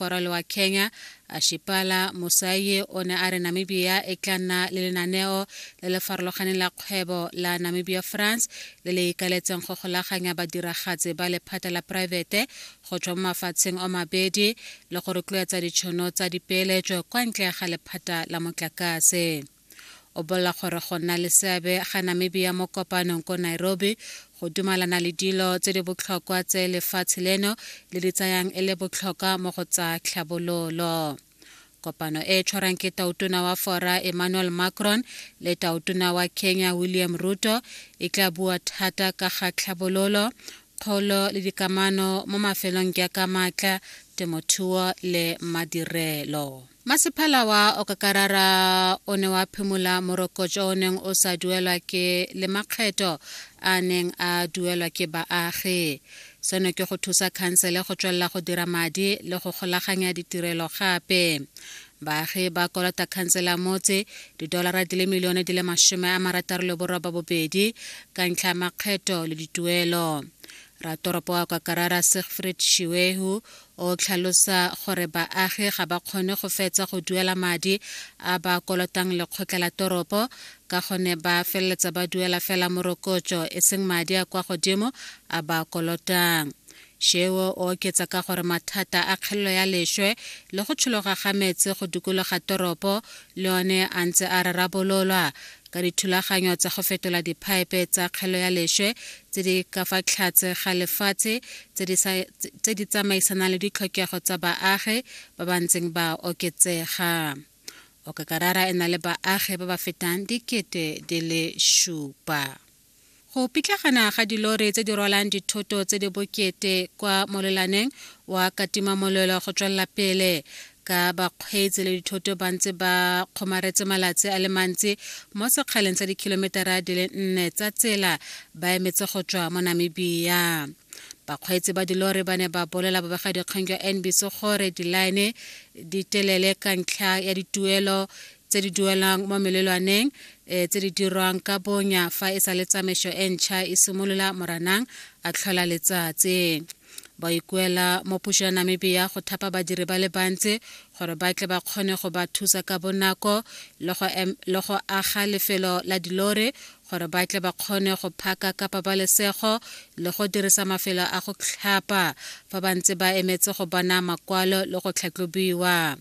Korole wa Kenya, Ashipala Musayi o ne a re Namibia e tla nna le lenaneo le le farologaneng la kgwebo la Namibia France le le ikaletseng go golaganya badiragatsi ba lephata la poraefete go tswa mo mafatsheng o mabedi le go rotloetsa ditšhono tsa dipeeletso kwa ntle ga lephata la motlakase. o bolela gore go nna le seabe ga namibia mo kopanong ko nairobi go dumalana le dilo tse di botlhokwa tse lefatshe leno le di tsayang e le botlhokwa mo go tsa tlhabololo kopano e tshwarang ke tautona wa fora emmanuel macron le tautona wa kenya william ruto e tla bua thata ka ga tlhabololo kgolo le dikamano mo mafelong jaaka maatla temothuo le madirelo Masepala wa Okakarara o ne wa phimola morokotso o neng o sa duelwa ke le makgetho a neng a duelwa ke baagi. Seno ke go thusa khansele go tswelela go dira madi le go golaganya ditirelo gape. Baagi ba kolota khansele ya motse didolara di le milione di le masome a marataro le boroba bobedi ka ntlha ya makgetho le dituelo. Ratoropo wa Okakarara Siegfried Shiwehu o tlhalosa gore baagi ga ba kgone go fetsa go duela madi a ba kolotang lekgotla la toropo ka gone ba feleletsa ba duela fela morokotso e seng madi a kwa godimo a ba kolotang sheo o oketsa ka gore mathata a kgelelo ya lešwe le go tshologa ga metse go dikologa toropo le one a ntse a rarabololwa ka dithulaganyo tsa go fetola diphaepe tsa kgelo ya lešwe tse di ka fa tlhatse ga lefatshe tse di tsamaisanang le ditlhokego tsa baagi ba ba ntseng ba oketsega okakarara e na le baagi ba ba fetang dikete di le šupa Go pitlagana ga dilori tse di rwalang dithoto tse di bokete kwa molelaneng wa katimamolelo go tswelela pele ka bakgweetsi le dithoto ba ntse ba kgomaretse malatsi a le mantsi mo sekgaleng sa dikhilometara di le nne tsa tsela ba emetse go tswa mo namibia bakgweetsi ba dilori ba ne ba bolela bobegadikgang jwa nbc gore dilaene di telele ka ntlha ya dituelo tse di duelang mo melelwaneng e tse di dirwang ka bonya fa e sa le tsamaiso e ntšha e simolola moranang a tlhola letsatsi ba ikuela mo puso ya namibia go thapa badiri ba le bantsi gore ba tle ba kgone go ba thusa ka bonako le go aga lefelo la dilore gore ba tle ba kgone go phaka ka pabalesego le go dirisa mafelo a go tlhapa fa ba ntse ba emetse go bona makwalo le go tlhatlobiwa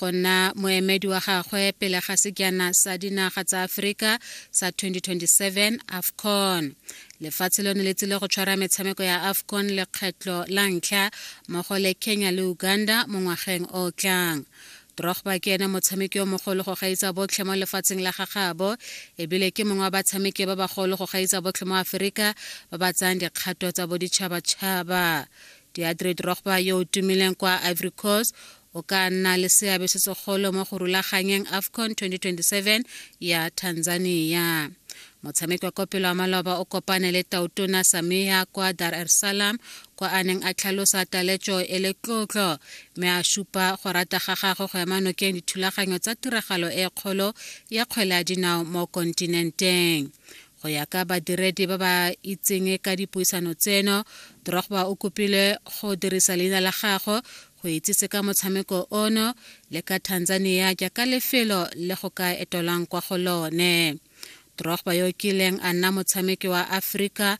go nna moemedi wa gagwe pele ga sekjana sa dinaga tsa aforika sa 2027 afcon lefatshe lone le tsile go tshwara metshameko ya afcon lekgetlho la ntlha mmogo le kenya le uganda mo ngwageng o tlang drogba ke ene motshameki yo mogolo go gaisa botlhe mo lefatsheng la gagabo ebile ke mongwe wa batshameki ba bagolo go gaisa botlhe mo aforika ba ba tsayang dikgato tsa boditšhabatšhaba diadre drogba yo o tumileng kwa ivory coast o ka nna le seabe se segolo mo go rulaganyeng afcon 2027 ya tanzania motshameki wa kopelo wa maloba o kopane le tautona samia kwa dar es salaam kwa a neng a tlhalosa taletso e le tlotlo mme a supa go rata ga gagwe go ema nokeng dithulaganyo tsa tiragalo e kgolo ya kgwele ya dinao mo kontinenteng go ya ka badiredi ba ba itseng ka dipuisano tseno drogba o kopile go dirisa leina la gago go itsise ka motshameko ono le ka tanzania jaaka lefelo le go ka etolwang kwa go lone drogba yo kileng a nna motshameki wa aforika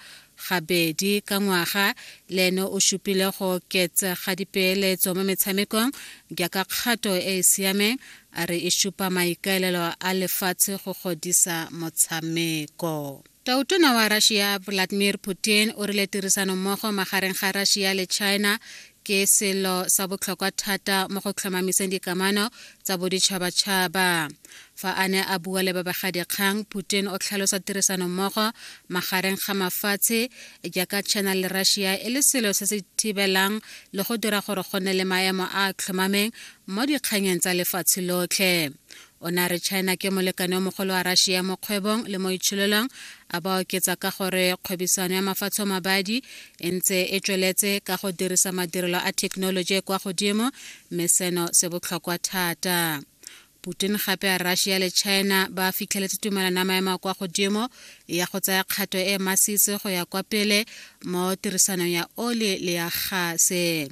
gabedi ka ngwaga le ene o supile go oketsa ga dipeeletso mo metshamekong jaaka kgato e e siameng a re e supa maikaelelo a lefatshe go godisa motshameko Tautona wa Russia Vladimir Putin o rile tirisano mmogo magareng ga Russia le China ke selo sa botlhokwa thata mo go tlhomamiseng dikamano tsa boditšhabatšhaba fa a ne a bua le babegadikgang putin o tlhalosa tirisanommogo magareng ga mafatshe jaaka china le russia e le selo se se thibelang le go dira gore go nne le maemo a a tlhomameng mo dikganyeng tsa lefatshe lotlhe o ne a re china ke molekane o mogolo wa russia mo kgwebong le mo itshololong a ba oketsa ka gore kgwebisano ya mafatsho mabadi e ntse e tsweletse ka go dirisa madirelo a thekenoloji e kwa godimo mme seno se botlhokwa thata putin gape a russia le china ba fitlheletse tumelano ya maemo a kwa godimo ya go tsaya kgato e masisi go ya kwa pele mo tirisanong ya oli le ya gase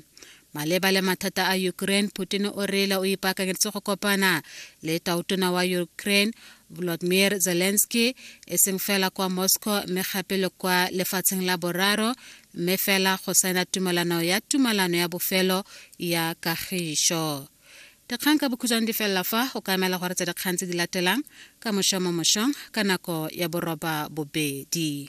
Maleba le mathata a Ukraine, Putin o reela o ipaakanyeditse go kopana le tautona wa Ukraine Volodymyr Zelensky e seng fela kwa Moscow mme gape le kwa lefatsheng la boraro mme fela go saena tumalano ya tumalano ya bofelo ya kagišo. Dikgang ka bokhutshwane di felela fa o ka emela gore tsa dikgang tse di latelang ka mošwa mo mošong ka nako ya boroba bobedi.